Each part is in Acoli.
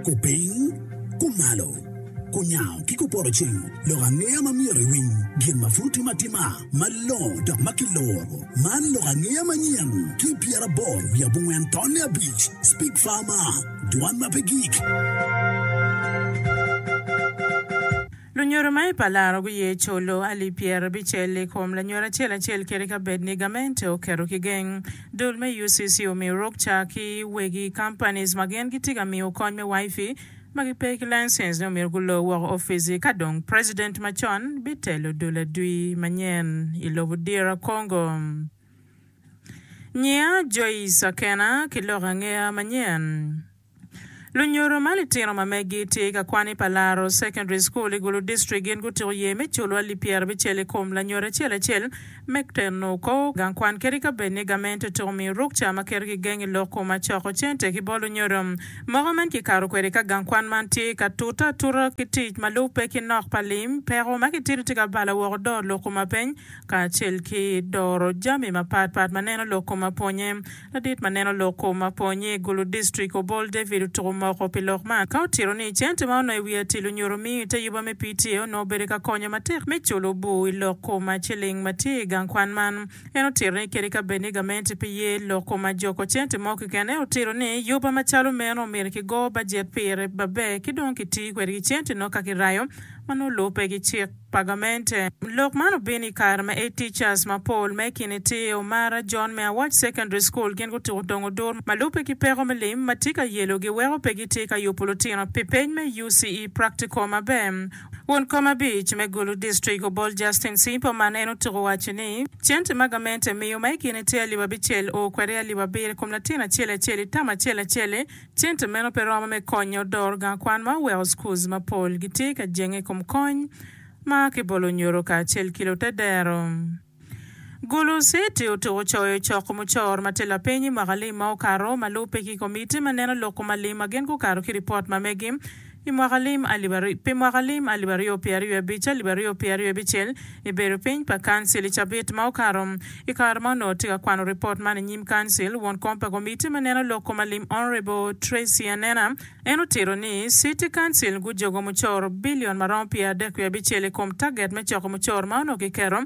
Kupiny, kumalo, kunyango ki kupoto cing lok angeya ma myero iwiny gin ma pud tim atima malongo dok ma kiloro. Man lok angeya manyen ki i pyeraboro wiye abongwen tonne abic, Speak Farmer, Dwan ma pe gik. Lunyodo ma i palaro guye colo alip pyerabicel i kom lanyodo acel acel kadi ka bed ni gamente oketo ki geng. Dul me UCC omiyo ruk ca ki wegi companies ma gin gitye ka miyo kony me Wifi ma gipe ki license ni omyero gulo woko ofici ka dong president macon bitelo dul adwi manyen i lobo DR Congo. Nyiya Joyce Akena ki lok angeya manyen. Lunyoro ma litino ma megi tye i kakwani pa Laro Secondary School i Gulu District gin gutyeko ye me culo alip pyera abicel i kom lanyodo acel acel me teno kor gang kwan kadi ka bed ni gament otyeko miyo rukca ma keto gigeng i lok koma coko cente ki bot lunyodo moko. Man kikato kwede ka gang kwan man tye ka tute atuta ki tic ma lubbe ki nok pa lim, peko ma kitito tye ka balo woko doro lok koma peny kacel ki doro jami mapat pat ma neno lok koma pwonye. Ladit ma neno lok kom mapol nyi Gulu District Obol David otuko moko pi lok man ka otito ni cente ma onongo i wi atil onyuto miyo ite yuba me PTA onongo obedo ka konyo matek me culo obuu i lok kom ma ciling ma tye i gang kwan man. En otito ni kadi ka bed ni gamente pe ye lok kom ma joko cente mo kekene otito ni yuba macalo meno omyero ki go bajet pire baber ki dong ki ti kwedgi cente nongo ka ki rayo ma nongo lube ki cik. Pagamente. Lok man obino i kare ma A Teachers mapol ma i kine tye Omara John me Awach Secondary School gin gutuko tong odur ma lubbe ki peko me lim ma tye ka yelogi weko pe gitye ka yubo lutino pi peny me UCE practical maber. Won kom abic me Gulu District Obol Justin Simpo man en otuko owaco ni, Cente ma gamente miyo ma i kine tye alip abicel oo kwede alip abiro i kom latin acel acel i tam acel acel-li, Cente meno pe romo me konyo doro gang kwan ma oweko schools mapol gitye ka jenge i kom kony ma a ki bolo nyoro kacel ki lutedero. Gulu City otuko coyo coko mucor ma tye lapiny i mwaka lim ma okato ma lubbe ki komiti ma neno loko ma lim ma gin gukato ki ripot ma megi Pi mwaka lim alip aryo pye aryo abic alip aryo pye aryo abicel, i bedo piny pa Kancil i cabit ma okato. I kare ma onongo tye ka kwano ripot man i nyim Kancil, won kom pa Komitti me Neno Lok Kom Alim Honourable Tracy Anena, en otito ni City Council gujogo mucoro billion ma romo pye adek wiye abicel i kom target me coko mucoro ma onongo kiketo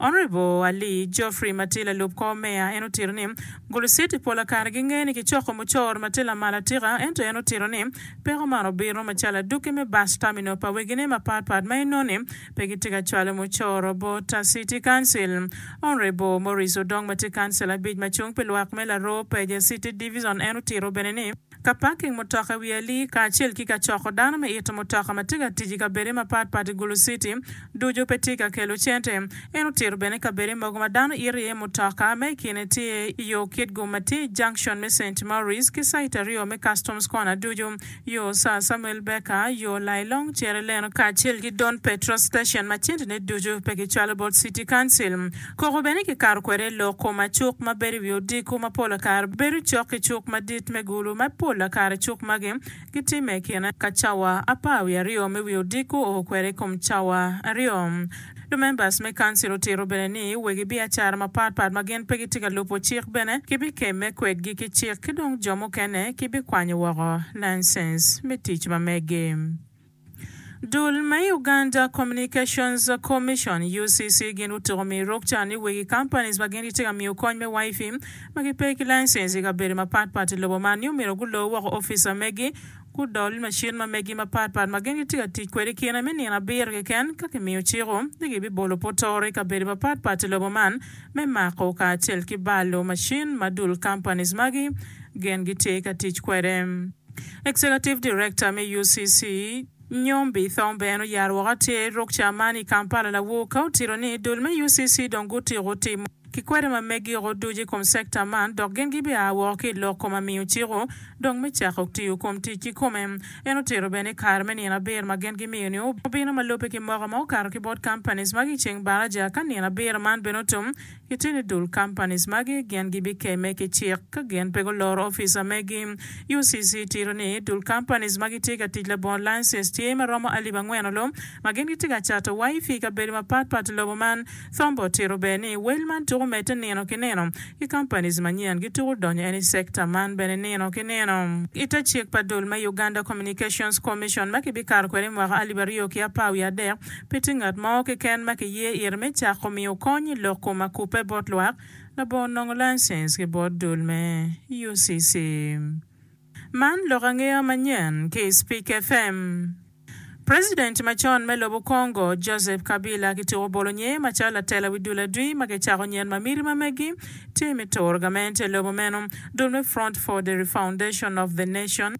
Honourable Ali Geoffrey ma tye lalub kor meya en otito ni, Gulu City pol akare gingeyo ni kicoko mucoro ma tye lamal atika ento en otito ni, peko man obino macalo adwogi me bus terminal pa wegine mapat pat ma inongo ni pe gitye ka cwalo mucoro bot City Council. Honourable Maurice Odong ma tye Councillor abic ma cung pi lwak me Laroo Peja City Divison en otito bene ni, ka paking mutoka i wi ali, kacel ki ka coko dano me ito mutoka ma tye ka tic i kabedde mapatpat i Gulu Citi, ducu pe tye ka kelo cente. En otito bene kabedde mogo ma dano ito iye mutoka, ma i kine tye i yo Kitgum ma tye i junction me Saint Maurice ki site aryo me Customs Corner ducu, yo Sir Samuel Baker, yo Lailong Cere Lane, kacel ki Don Petro Station ma centene ducu pe kicwalo bot City Council. Koko bene kikato kwede i loko ma cuk ma bedo i wi odiko ma pol kare bedo cok ki cuk madit me gulu, ma pol kare cuk magi gitimme i kine ka cawa apar wiye aryo me wi odiko oo kwede i kom cawa aryo. Lumembas me kancil otito bene ni wegi biacara mapat pat ma gin pe gitye ka lubo cik bene kibikemme kwedgi ki cik ki dong jo mukene kibikwanyo woko laincense me tic ma megi. Dul me Uganda Communications Commission, UCC, gin gutuko miyo ruk ca ni wegi companies ma gin gitye ka miyo kony me Wifi ma gipe ki license i kabedo mapat pat i lobo man ni omyero gulor woko ofica megi gudol macin ma megi mapat pat ma gin gitye ka tic kwede kine me nino abiro keken ka kimiyo ciko ni gibibolo potoro i kabedo mapat pat i lobo man me mako kacel ki balo macin ma dul companies magi gin gitye ka tic kwede. Executive Director me UCC, Nyombi Thombe en oyaro woko atir ruk ca man i Kampala lawur ka otito ni dul me UCC dong gutiko timo ki kwede ma megio ducu i kom sector man dok gin gibia woko ki i lok koma miyo ciko dong me cako tiyo kom tic ki kome. En otito bene ni kare me nino abiro ma gin gimiyo ni obino ma lubbe ki moko ma okato ki bot companies magi i ceng baraja ka nino abiro man bene otum, I teni dul companies magi gin gibikeme ki cik ka gin pe guloro ofica megi. UCC tito ni dul companies ma gitye ka tic labongo license tye ma romo alip angwen olo ma gin gitye ka cato Wifi i kabedo mapat pat i lobo man. Thombo otito bene ni wel man tuko medde nino ki nino ki companies manyen gituko donyo en i sector man bene nino ki nino. I te cik pa dul me Uganda Communications Commission ma kibikato kwede i mwaka alip aryo ki apar wiye adek, Pe tye ngat mo keken ma kiye ire me cako miyo kony i lok kom akubbe bot lwak labongo nongo laicens ki bot dul me UCC. Man lok angeya manyen ki i Spik FM. President macon me lobo Congo, Joseph Kabila kityeko bolo nye macalo latela wi dul adwi ma kicako nyen ma miti ma megi tye me turo gamente lobo meno. Dul me Front for the Refoundation of the Nation,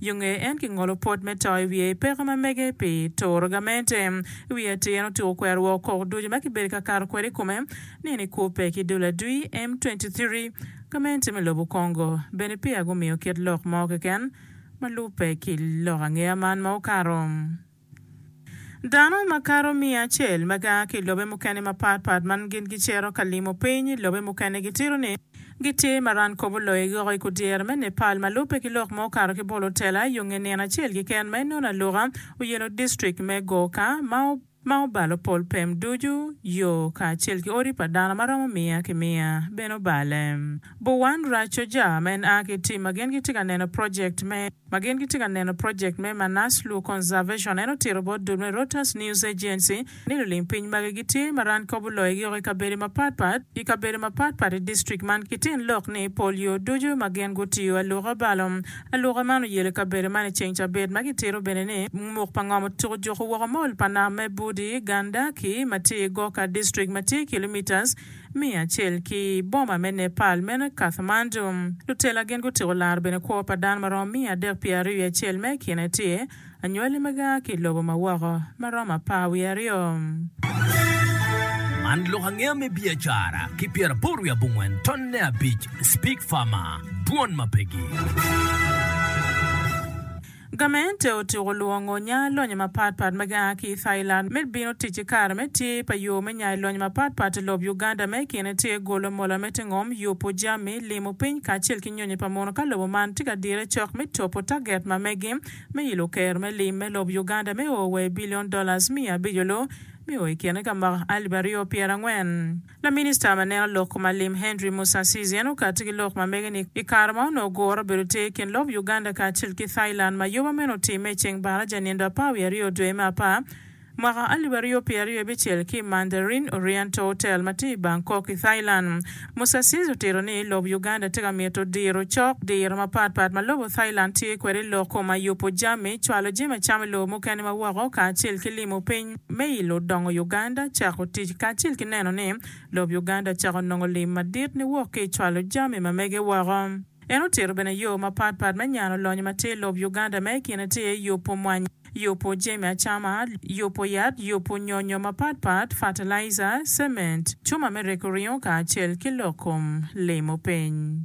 Yo nge en kingolo pot me to i wiye i peko ma mege pi turo gamente. I wi atir en otyeko kwero woko kok ducu ma kibedo ka kato kwede i kome, nino i kubbe ki dul adwi, M23. Gamente me lobo Congo bene peya gumiyo kit lok mo keken ma lubbe ki lok angeya man ma okato. Dano makato miya acel ma gia ki i lobe mukene mapat pat ma gin gicito ka limo piny i lobe mukene gitito ni gitye ma ran kobo loyo i goko i kudyere me Nepal ma lubbe ki lok ma okato ki bolo tela yo nge nino acel keken ma inono aluka oyelo distrik me Gorkha ma obalo pol pem ducu yo kacel ki odi pa dano ma romo miya ki miya bene obale. Bhuwan Rachojah ma en a ki i tim ma gin gitye ka neno project me. ma gin gitye ka neno project me Manaslu Conservation, en otito bot dul me Reuters News Agency ni lulim piny magi gitye ma rany kop oloyogi woko i kabedo mapat pat i kabedo mapat pat i district man ki tin lok ni pol yo ducu ma gin gutiyo aluka balo aluka man oyelo i kabedo man i ceng cabit ma gitito bene ni ngumuk pa ngom otyeko juko woko mol pa nam me Budi, Ganda ki ma tye i Goka District ma tye kilometres Me acel ki i boma me Nepal meno Kathmandu, lutela gin gutiko laro bene kwo pa dano maromo miya adek pye ariwi acel ma i kine tye anywali ma ga ki i lobo ma woko ma romo apar wiye aryo. Man lok angeya me biacara ki pyera boro wiye abongwen ton ne abic, Speak Farmer, Dwon ma pegi. Gamente otyeko lwongo nya lonyo mapat pat ma gia ki i Thailand me bino tic ki kare me tye pa yo me nyayo lonyo mapat pat i lob Uganda ma i kine tye golo mola me tingom, yubu jami, limo piny kacel ki nyonyo pa mono ka lobo man tye ka dire cok me topo target ma megi me ilo kero me lim me lob Uganda me o wa i billion dollars miya abico lo me o i kine ka mwaka alip aryo pyerangwen. Laminista ma neno lok ma lim Henry Musasizi en okati ki lok ma mege ni i kare ma onongo gure obedo ter i kin lob Uganda kacel ki Thailand ma yoba meno otimme i ceng baraja nindo apar wiye aryo dwe me apar mwaka alip aryo pye aryo bicel ki i Mandarin Oriental Hotel ma tye i Bangkok i Thailand. Musasizi otito ni lob Uganda tye ka mito diro cok diro mapat pat ma lobo Thailand tye kwede i lok ma yubo jami, cwalo jami acama i lobo mukene ma woko kacel ki limo piny. me ilo dongo Uganda cako tic kacel ki neno ni lob Uganda cako nongo lim madit niwok ki i cwalo jami ma mege woko. En otito bene yo mapat pat me nyano lonyo ma tye i lob Uganda ma i kine tye iye yubu mwanyi, yubu jami acama, yubu yat, yubu nyonyo mapat pat, fatalaija, cement, cuma me reko ringo kacel ki lok kom limo piny.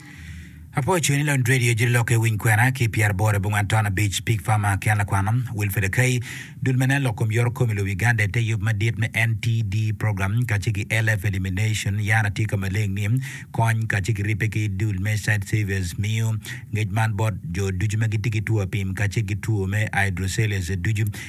Apo ocung ni Lon Radio Jiri Lok Iwiny Kwena ki Pyera Bor Ibunga Anton Abic Pig Farmer ki an lakwano Wilfred Akai Dul me nen lok kom yoro kom ilub Uganda ite yub madit me NTD program kace ki LF elimination yan atye ka maleng ni kony kace ki ripe ki dul me site savers miyo ngec man bot jo ducu ma gitye ki two apim kace ki two me hydrocelus ducu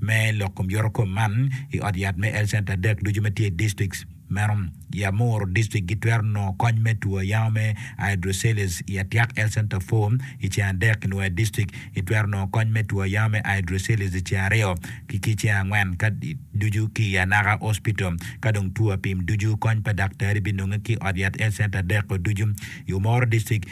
me lok kom yorokom man i ot yat me health center adek ducu ma tye i districts meno. I Amuru district gitwero nongo kony me two ayama me hydroceles i Atiak health center four i ceng adek, i Nwoya district itwero nongo kony me two ayama me hydroceles i ceng aryo ki ki ceng angwen ka ducu ki i Anaka hospital. Ka dong two apim ducu kony pa daktari binonge ki i ot yat health center adek-ko ducu. I Omoro district.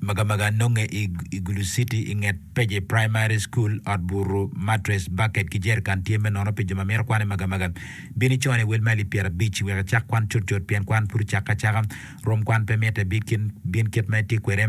Magamaga nonge i Igulu City i nget Peje Primary School. Ot buru, matress, baket ki jerican tye me nono pi jo ma mito kwano i Magamaga. Bin icone i wel mail i pyerabic wek icak kwan cutcut pien kwan pud ocakke acaka. Rom kwan pe mitte, bin kit ma itye kwede.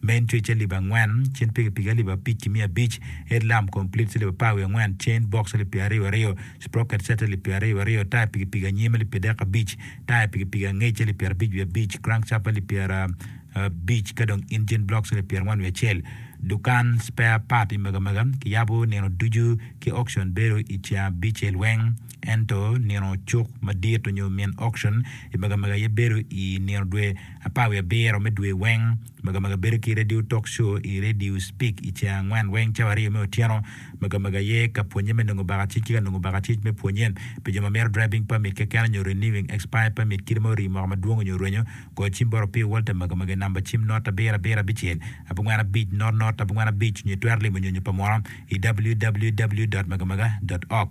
Main Twitch alip angwen, Chain Pikipiki alip abic ki miya abic, Head Lamp Complete alip apar wiye angwen, Chain Box alip pyeraryo aryo, Sprocket Set alip pyeraryo aryo, Taya Pikipiki anyim alip pyerdek abic, Taya Pikipiki angec alip pyerabic wiye abic, Crankshaft alip pyerabic ka dong Engine Blocks alip pyerangwen wiye acel. Dukan spare part i Megamega kiyabo nino ducu ki auction bedo i ceng abicel weng ento nino cuk madit onyo min auction i Megamega aye bedo i nino dwe Apar wiye abiro me dwe weng, Magamaga bedo ki radio talk show i Radio Speak i ceng angwen weng cawa aryo me otyeno. Magamaga aye ka pwonye me nongo bakacic ki ka nongo bakacic me pwonye. Pi jo ma mito driving permit keken nyo renewing expired permit kite ma orii moko madwong nyo rwenyo, goyo cim bot Opio Walter Magamaga i namba cim not abiro abiro abicel abongwen abic not not abongwen abic nyo itwero limo nyonyo pa munu i www. Magamaga. Org.